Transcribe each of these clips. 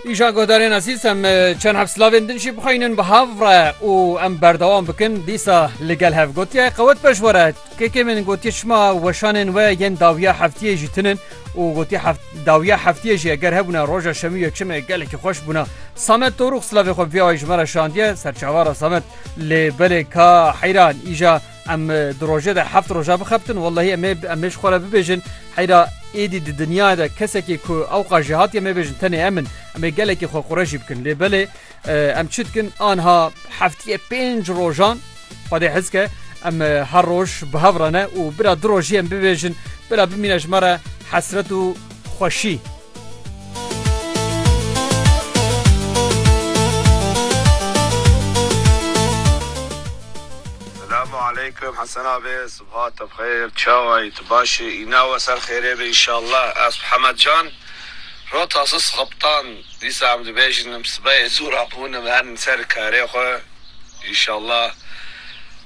Îşan guhdarên ezîz em çend hev silavên din jî bixwînin bi hev re û em berdewam bikin dîsa li gel hev gotiye qewet beş were kekê min gotiye şima weşanên we yên dawiya heftiyê jî tinin û gotiye dawiya heftiyê jî eger hebûna roja şemî yekşemê gelekî xweş bûna samet torûx silavê xwe viyawayî ji me re şandiye serçavara samet lê belê ka heyran îja Em di rojê de heft roja bixebtin wellahî em ê em ê ji xwe re bibêjin heyra êdî di dinyayê de kesekî ku ewqa jî hatiye em ê bêjin tenê em in em ê gelekî xwe qure jî bikin lê belê em çi dikin anha heftiye pênc rojan xwedê hez ke em her roj bi hev re ne û bira du rojî em bibêjin bira bimîne ji me re hesret û xweşî Selamu aleykum Hesen abi subha te bi xeyr çawa yî tu baş î îna we ser xêrê be înşallah ez bi Hemed Can ro tasu Sixiptan dîsa em dibêjin em sibeyê zû rabûn em herin ser karê xwe înşallah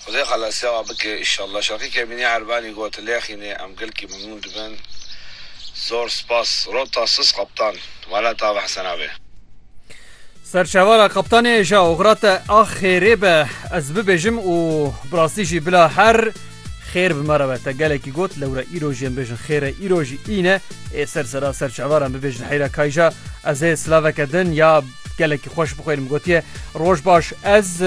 Xwedê xelasiya wan bike îşallah. Şerqî Kemînî Erbenî got, Lêxînê em gelkî mimnûn dibin. Zor spas. Rota sis qeptan. Welata ava hesen avê. Ser çavala qeptanê ja oxira te a xêrê be ez bibêjim û bi rastî jî bila her xêr bi me re be. Te gelekî got lewre îro jî em bêjin xêr e îro jî în e. Ê ser sera ser çavala em bibêjin heyra kayja. Ez ê silaveke din ya gelekî xweş bixwînim gotiye, Roj baş ez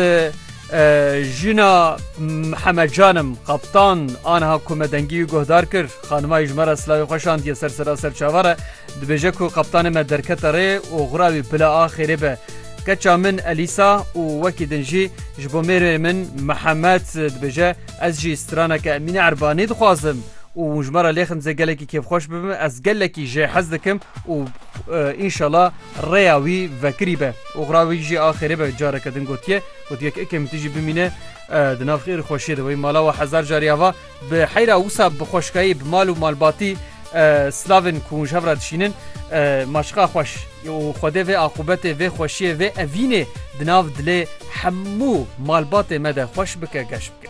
Jina Mihemed Canim Kaptan aniha ku me dengî wî guhdar kir, xanimayî ji me re silavê xwe şandiye ser sera serçava re, dibêje ku kaptanê me derkete rê û xwira wî bila a xêrê be. Keça min Elîsa û wekî din jî ji bo mêrê min Mihemed dibêje, Ez jî straneke Emîne Erbanî dixwazim û hûn ji me re lêxin dizê gelekî kêfxweş bibim, ez gelekî jê hez dikim û înşela rêya wî vekirî be û xwira wî jî a xêrê be, careke din gotiye. Got yek ekê min tî jî bimîne di nav xêr û xweşiyê de wê mala we hezar carî ava bi heyra wisa bi xweşkayî bi mal û malbatî silavên ku hûn ji hev re dişînin ma çiqa xweş û xwedê vê aqûbetê vê xweşiyê vê evînê di nav dilê hemû malbatê me de xweş bike geş bike.